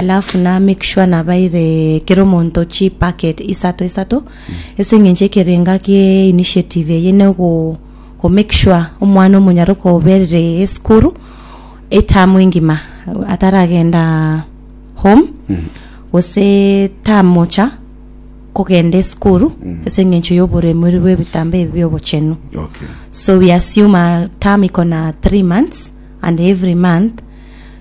Alafu na make sure nabaire kera omonto chi packet isato isato ase eng'encho ekerenga kie initiative eye ne go go make sure omwana omonyare okoberire esukuru etamu engima ataragenda home gose tamocha kogenda esukuru ase eng'encho ya oboremori bwa ebitambo ebi bia obochenu Okay. so we assume a term iko na three months and every month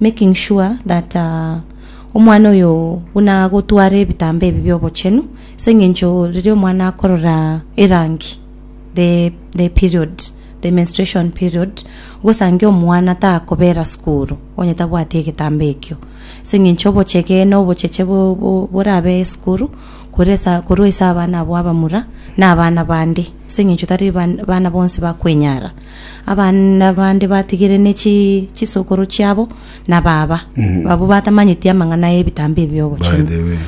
making sure that omwana oyo buna agotwara ebitambaa ebi bi'obochenu, ase eng'encho riria omwana akorora erangi, the the period, the menstruation period, ogosange omwana takobera sukuru onye tabwati egetambaa ekio, ase eng'encho obochege na obocheche bo bo borabe esukuru kore ase korwa ase abana abwo abamura na abana bande, ase eng'encho tari bana bonsi bakwenyara. Abana bande batigire ne chisokoro chiabo na baba, abwo batamanyeti amang'ana y'ebitambo ebi'obochenu.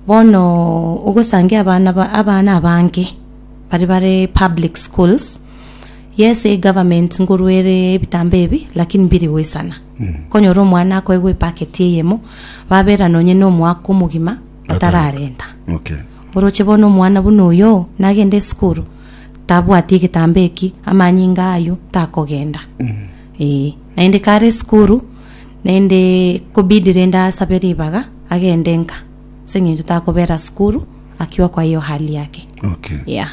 Bono ogosange abana abange baria bare public schools, yes egoverment nkoruere ebitambo ebi lakini mbiri goisana. Okonyora omwana akoegwa epaketi eyemo, babera nonye na omwaka omogima batararenta. Oroche bono omwana buna oyoo nagende esukuru. tabwati egetambaa eki, amanyinga ayio takogenda. Ee, naende kare esukuru, naende ekobidi rende asabe ribaga agende nka, ase eng'encho takobera sukuru akiwa kwa hiyo hali yake. Okay. Yeah.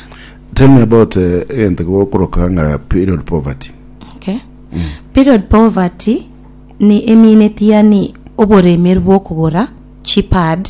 Tell me about eh, egento gokoroka ng'a period poverty. Okay. Period poverty ni emineti yani oboremeru bw'okogora chipad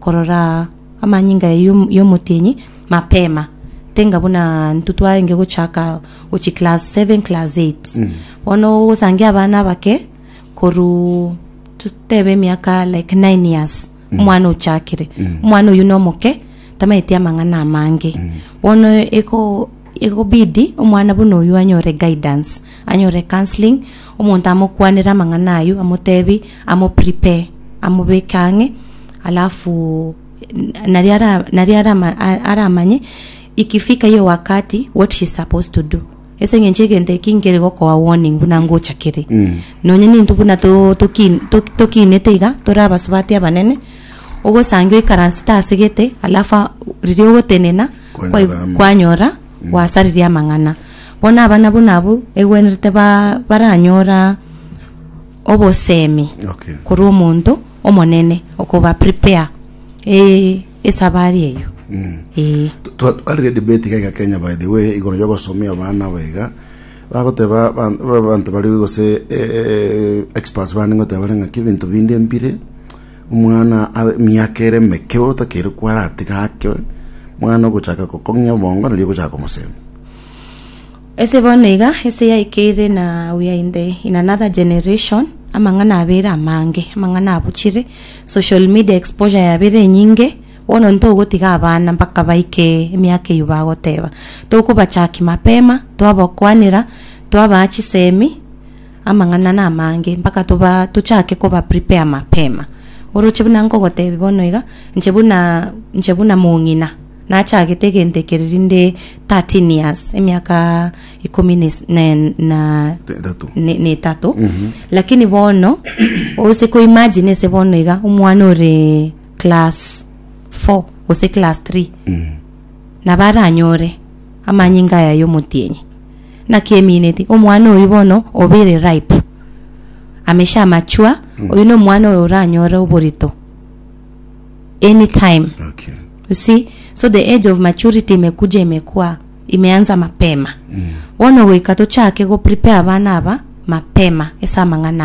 Korora amanyinga y'omotienyi mapema, tenga buna intwe twarenge gochaka gochia class seven, class eight. Bono osange abana abake korwa totebe emiaka like nine years omwana ochakire, omwana oyio nomoke, tamanyeti amang'ana amange. Bono eko. Egobidi omwana buna oyio anyore guidance, anyore counselling, omonto amokwanere amang'ana ayio amotebi amo prepare amobeke ang'e alafu naria ara naria ara ama aramanye ikifika hiyo wakati what she is supposed to do ase eng'encho egento eki nkere gokoa warning buna ngocha kere. Nonya nintwe buna to toki tokinete iga tore abasubati abanene, ogosange oikaransete asegete alafu a riria ogotenena. Kwanyora amo. kwanyora gwasaririe amang'ana bono aba nabwo nabwo egwenerete ba- baranyora obosemi Okay. korwa omonto omonene okoba prepare eh, esabari eyo Mm. Eh, Twa- twarire debate iga iga kenya by the way igoro ya gosomia abana aba iga bagoteba ban- ba- banto bari gose eh, experts bane goteba bare ng'aki ebinto binde mbire Omwana ase emiaka ere emeke otakeire kwara atiga ake mwana ogochaka gokong'ia obongo nario ogochaka komosenda. Ase bono iga, ase yaikeire na we are in the in another generation, amang'ana abeire amange, amang'ana abuchire, social media exposure yabire enyinge, bono ntogotiga abana mpaka baike emiaka eyio bagoteba, tokobachaki mapema, twabakwanera, twabaa chisemi, Amang'ana namange, mpaka toba tochake koba prepare mapema. Oroche buna nkogotebi bono iga, inche buna inche buna mong'ina, nachagete egento eke riria nde thirteen years, emiaka ikomi na is- na en- na Tetato. ne- na etato lakini bono ose ko imagine ase bono iga omwana ore class four gose class three nabo aranyore amanyinga aya ya omotienyi Naki emineti omwana oyio bono obeire ripe, amesha amachua, oyio na omwana oyo oranyore oborito any time. Okay. You see? So the age of maturity imekuja imekua imeanza mapema. Bono goika tochake go prepare abana aba mapema ase amang'ana aya.